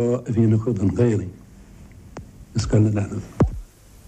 a bhí acu don Ghaelainn i Scoil na Leanbh.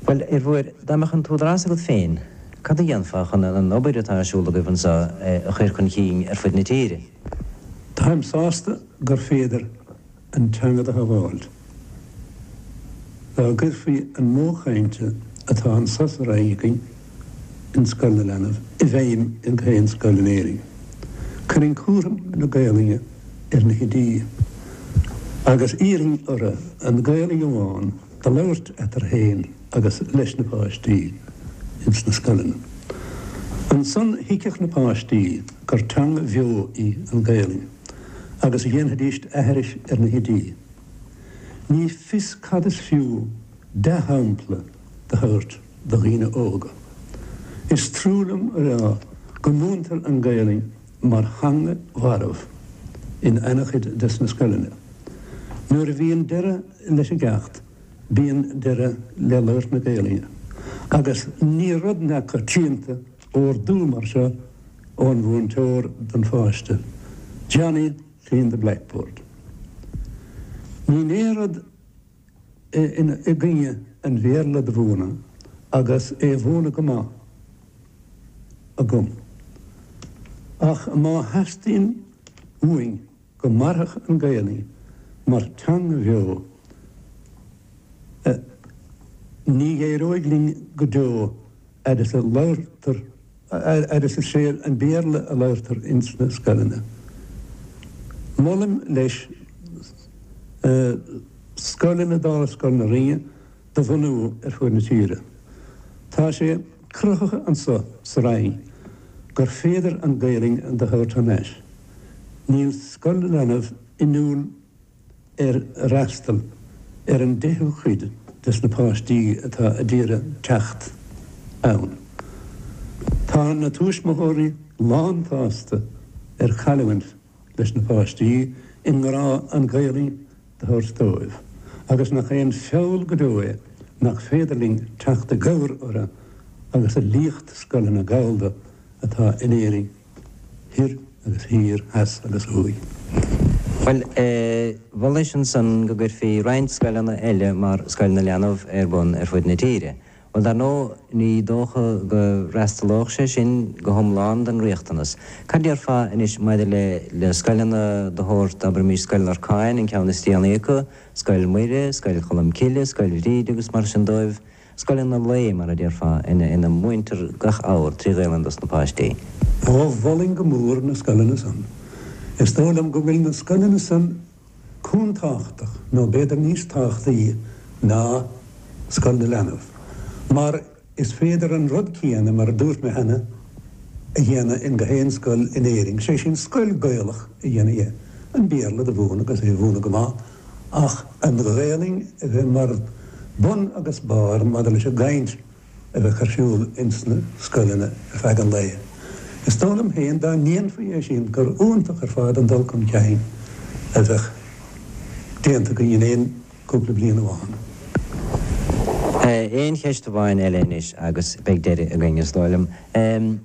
Bhuel, abair, dá mbeadh an t-údarás agat féin, cad a dhéanfá chun an an obair atá ar siúl agaibh anseo a chur chun cinn ar fud na tíre? Táim sásta gur féidir an teanga do shabháil. Dá gcuirfí an modh cainte atá anso sa Rinn againn, in Scoil na Leanbh i bhfeidhm i ngach aon scoil in Éirinn. Chuirfinn cúram na Gaolainne ar na hoidí agus d'iarrfainn orthu an Ghaolainn amháin do labhairt eatarthu féin agus leis na páistí ins na scoileanna. Ansan thuigfeadh na páistí gur teanga bheo í an Ghaolainn agus dhéanfaidíst aithris ar na hoidí. Ní fios cad is fiú. dea-shampla do thabhairt do dhaoine óga. Is trua liom a rá go múintear an Ghaelainn mar theanga mharbh in an-chuid des na scoileanna. Nuair a bhíonn deireadh leis an gceacht, bíonn deireadh le labhairt na Gaelainne agus ní rud neamhchoitianta ordú mar seo ón mhúinteoir don pháiste, Johnny, clean the blackboard. Níl aon rud i gcoinne an Bhéarla do mhúineadh agus é a mhúineadh go maith agam. Ach má theastaíonn uainn go mairfeadh an Ghaelainn mar teanga bheo, ní éireoidh linn go deo. fhad is a labhartar, fhad is is é an Béarla a labhartar ins na scoileanna. Molaim leis scoileanna dála Scoil na Rinne do bhunú ar fuaid na tíre. Tá sé cruthaithe annso sa Rinn gur féidir an Gaelainn do thabhairt thar n-ais. Níl Scoil na Leanbh inniúil. ar fhreastal ar an deichiú cuid des na páistí atá a d'iarraidh teacht ann. Tá na tuismitheoirí lántsásta ar chailliúint leis na páistí i ngrá an Ghaelainn do thabhairt dóibh agus nach é an feall go deo é nach féidir linn teacht i gcabhair orthu agus a liacht scoileanna Gallda atá in Éirinn. thoir agus thiar, theas agus thuaidh. Bhuel, mholais ansan go gcuirfí roinnt scoileanna eile mar Scoil na Leanbh ar bun ar fud na tíre. Bhuel, dar ndóigh, ní dócha go bhfreastalódh sé sin go hiomlán don riachtanas. Cad déarfá anois maidir le le scoileanna de shórt, abraimis, Scoil Lorcáin, an ceann is déanaí acu, Scoil Mhuire, Scoil Cholmcille, Scoil Bhríde agus mar sin dóibh? Scoileanna an lae, mar a déarfá, ina múintear gach abhar trí Ghaelainn dos na páistí. Ó, mholfainn go mór na scoileanna san. Is dóigh liom go bhfuil na scoileanna san chomh tábhachtach, nó b'fhéidir níos tábhachtaí ná Scoil na Leanbh, mar is féidir an rud céanna, mar a dúirt mé cheana, a dhéanamh ins gach aon scoil in Éirinn, sé sin, scoil Gaelach a dhéanamh dhe, an Béarla do mhúineadh agus é a mhúineadh go maith, ach an Ghaelainn a bheith mar bun agus barr maidir leis an gcaint a bheadh ar siúl ins na scoileanna ar feadh an lae. Is dóigh liom féin dá ndéanfaí é sin gur iontach ar fad an dul chun cinn a bheadh déanta againn in aon chúpla bliain amháin. Aon cheist amháin eile anois agus beidh deireadh againn, is dóigh liom. An.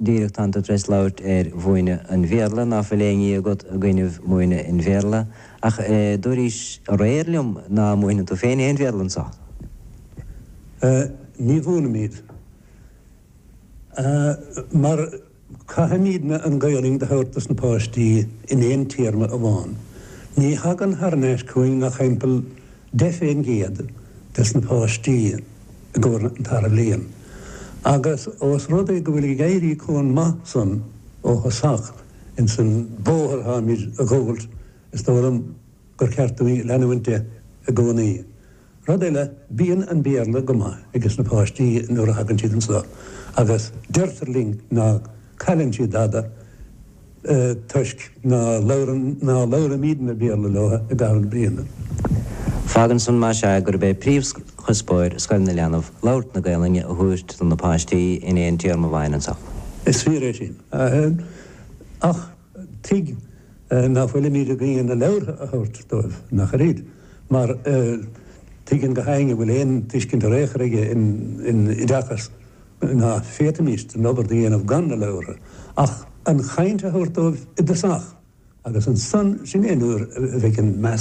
díreach tánn tú tar éis labhairt ar mhúineadh an Bhéarla, ná fuil aon ní agat i gcoinnibh múineadh an Bhéarla, ach dúraís aréir liom ná múineann tú féin aon Bhéarla anso. Ní mhúinimid, mar caithfimídne an Ghaelainn do thabhairt dos na páistí in aon téarma amháin. Ní thagann thar n-ais chugainn ach timpeall Deich faoin gcéad des na páistí i gcomhair an tarna bliain agus os rud é go bhfuil ag éirí chomh maith san ó thosach ins an bóthar táimid a ghabháilt is dóigh liom gur ceart dúinn leanúint de i gcónaí. Rud eile, bíonn an Béarla go maith ages na páistí nuair a thagann siad anso agus deirtear linn ná cailleann siad dada, toisc ná labhraímídne Béarla leo i gcaitheamh na bliana. Fágann san, más ea, gurb é príomhchuspóir Scoil na Leanbh labhairt na Gaelainne a thabhairt do na páistí in aon téarma amháin anso. Is fíor é sin. Ach tuig ná fuilimíd i gcoinne na leabhartha a thabhairt dóibh, ach oiread? Mar tuigeann gach éinne a bhfuil aon tuiscint ar aon chor aige in oideachas, ná féadfaimíst an obair do dhéanamh gan na leabhra, ach an chaint a thabhairt dóibh i dtosach, agus ansan, sin é an uair a bheidh an meas.